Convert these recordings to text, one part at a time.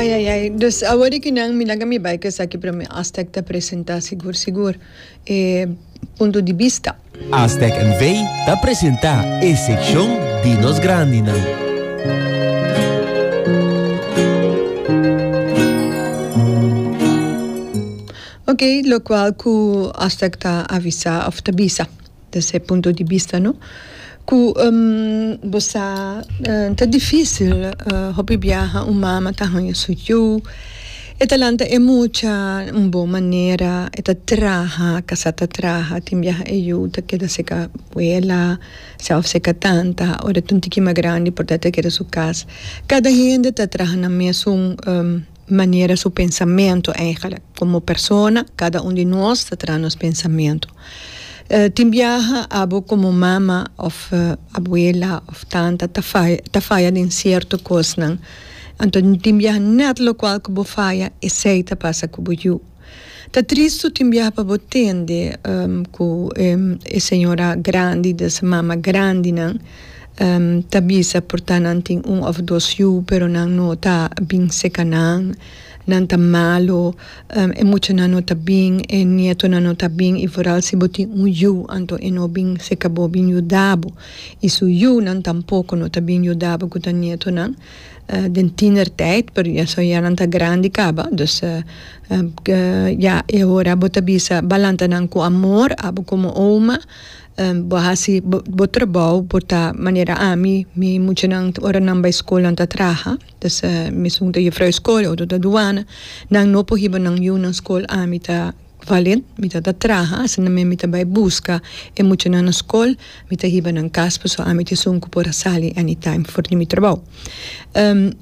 Ai ai ai, dus awor di ki nan mi laga mi bai ku esaki prome Aztec ta presenta sigur sigur e punto di bista. Aztec NV ta presenta e sekshon di nos grandinan. Oke, lokual ku Aztec ta avisa òf ta bisa. des'e punto di bista no cu bo sa ta dificil hopi biaha un mama ta hanja su yu e ta lanta e mucha un bon manera e ta traha casa ta traha tin biaha e yu ta keda cerca abuela sa of cerca tanta ora tin un tiki mas grandi por ta keda su cas cada hende ta traha na mesun. manera su pensamentu eigenlijk. Komo persona kada un di nos ta traha nos pensamentu. Tin biaha abo komo mama òf abuela òf tanta ta faya ta faya den sierto kosnan. Anto tin biaha nèt lokual ku bo faya esei ta pasa ku bo yu. Ta trist su tin biaha pa bo tende cu e señora grandi di esey mama grandinan ta bisa por ta nan tin un of dos yu pero nan no ta bin seca nan, nan ta malo e muchanan no ta bin e nietonan no ta bin y vooral si bo tin un yu anto e no bin seca bo bin yuda bo y su yunan tampoco no ta bin yuda bo cu ta nietonan. den tienertijd pero ya so ya nan ta grandi kaba dus ya e hora bo ta bisa bo a lanta nan ku amor abo komo oma bo a hasi bo trabou por ta manera ami mi muchanan ora nan bai school nan ta traha dus mi segun ta jufrou school otro ta duana nan no por hiba nan yu nan school ami ta Valent, mi ta ta traha, asinamei mi ta bai buska e muchanan na skol, mi ta hiba nan kas paso ami ta esun ku por a sali anytime for di mi trabou.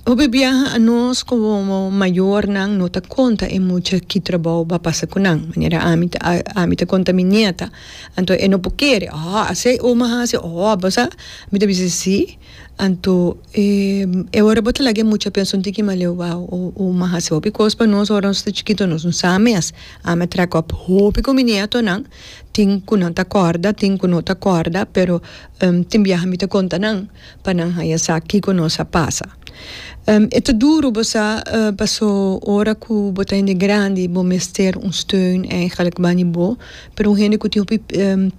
Hopi biaha anos komo mayornan no ta konta e mucha ki trabou bo a pasa ku nan, manera ami ta ami ta konta mi nieta, anto e no por kere, Aww asei oma hasi, aww abo sa, mi ta bisa si. Anto e e ora bo ta laga e mucha pensa un tiki maleo wou o o m'a hasi hopi kos pa nos ora nos ta chikito nos no sa mes ami a trek op hopi ku mi nietonan tin ku nan ta kòrda tin ku no ta kòrda pero tin biaha mi ta konta nan pa nan haña sa kiko nos a pasa e ta duru bo sa paso ora ku bo ta hende grandi bo mester un steun èigelik bani bo pero un hende ku tin hopi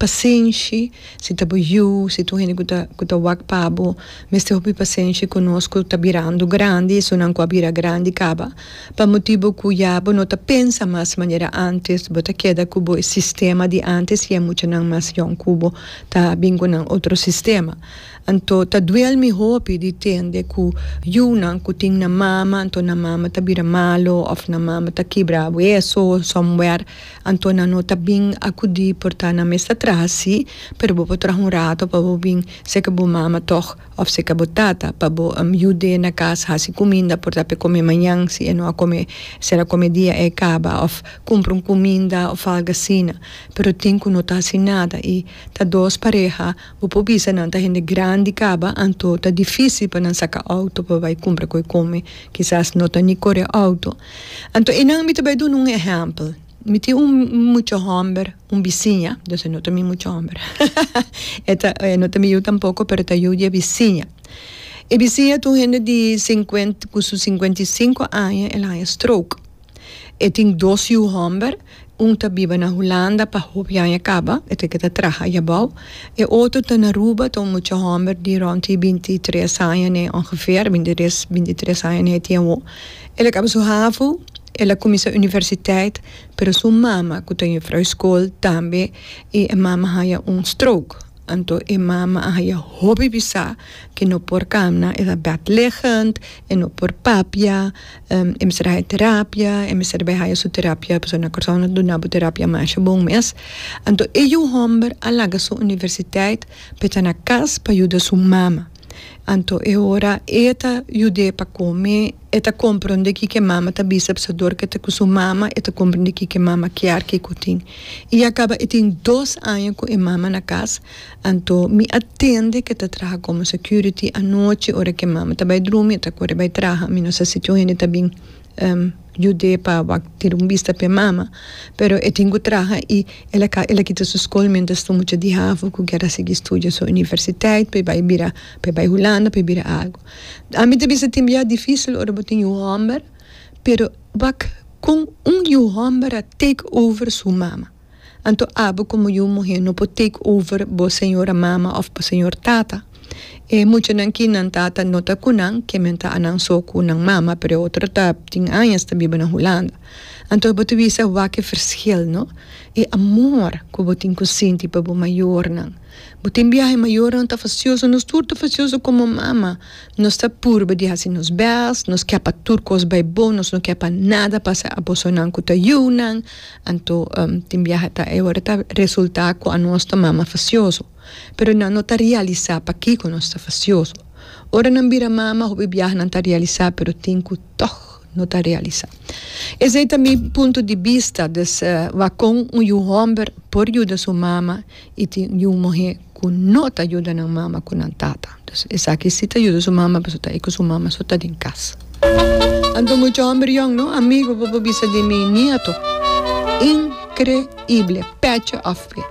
pasenshi. Si ta bo yu, si tur hende ku ta wak pa bo mester hopi pasenshi ku nos ku ta birando grandi, esunnan ku a bira grandi kaba pa motibu ku ya bo no ta pensa mas manera antes, bo ta keda ku bo e sistema di antes i e muchanan mas yòn ku bo ta bin ku nan otro sistema. Anto ta duel mi hopi di tende ku yunan ku tin nan mama, anto nan mama ta bira malu òf nan mama ta kibra hueso, somewhere. Anto nan no ta bin akudí por ta na mester traha sí, pero bo por traha un rato pa bo bin seka bo mama tòg òf seka bo tata pa bo yud'é na kas hasi kuminda por ta p'e kome mañan si e no a kome ser a kome dia e kaba òf kumpra un kuminda òf algu asina pero tin ku no ta hasi nada i ta dos pareha bo por bisa nan ta hende grandi kaba anto ta difísil pa nan saka outo pa bai kumpra ku e kome kisas no ta ni kore outo. Anto e nan mi ta bai duna un ehèmpel. Mi tin un mucha hòmber, un bisiña, dus e no ta mi mucha hòmber, e ta, e no ta mi yu tampoko, pero e ta yu di e bisiña. E bisiña ta un hende di sinkuenta, ku su sinkuenta i sinku aña el haña stroke. E tin dos yu hòmber. Un ta biba na Hulanda pa hopi aña kaba, e ta ke ta traha aye abou. E otro ta na Aruba, ta un mucha homber di rond di binti i tres aña n'e ongeveer, a binti tres, binti tres aña n'e tien awo. El a kaba su havo, el a kuminsá universiteit, pero su mama, ku ta jufrou school tambe, i e mama haña un stroke. Anto e mama a haya hopi bisa ke no por kamna, e ta bedliggend, e no por papia, e mester a haya terapia, e mester bai haya su terapia, pasobra na Kòrsou nan duna bo terapia masha bon mes. Anto e yu hòmber a laga su universiteit pa e ta na kas pa yuda su mama. Anto e ora e ta yud'é pa kome, e ta komprondé kiko e mama ta bisa pasobra ku e ta ku su mama e ta komprondé kiko e mama kier ke ku e tin. I a kaba e tin dos aña ku e mama na kas, anto mi a tende ku e ta traha komo security anochi ora ku e mama ta bai drumi, e ta kore bai traha, mi no sa si tur hende ta bin. Yudé pa bo a tira un bista p'e mama, pero e tin ku traha i el a ka, el a kita su skol miéntras tur mucha dihafu ku kier a sigui studia su universiteit pa e bai bira, pa e bai Hulanda pa e bira algu. Ami ta bisa tin biaha difísil ora bo tin yu hòmber, pero wak kon un yu hòmber a take over su mama. Anto abo komo yu muhé no por take over bo señora mama òf bo señor tata. E muchanan ki nan tata no ta ku nan ke men ta anan so ku nan mama pero e otro ta tin añas ta biba na Hulanda. Anto bo ta bisa wak e fershil no. E amor ku bo tin ku sinti pa bo mayornan. Bo tin biaha e mayornan ta fasioso, nos tur ta fasioso komo mama. Nos ta purba di hasi nos bèst, nos ke pa tur kos bai bo, nos no ke pa nada pasa a bosonan ku ta yu nan. Anto tin biaha ta e ora ta resulta kua nos ta mama fasioso, pero nan no ta realisa pakiko nos ta fasioso. Ora nan bira mama hopi biaha nan ta realisa pero tin ku tog no ta realisa. Esei ta mi punto di bista, des wak kon un yu homber por yuda su mama y tin yu muhe cu no ta yuda nan mama cu nan tata. Entonces esaki si ta yuda su mama pasobra ta e cu su mama so ta den cas. Anto mucha homber yong no amigo bo por bisa di mi nieto. Increible, peche of pie.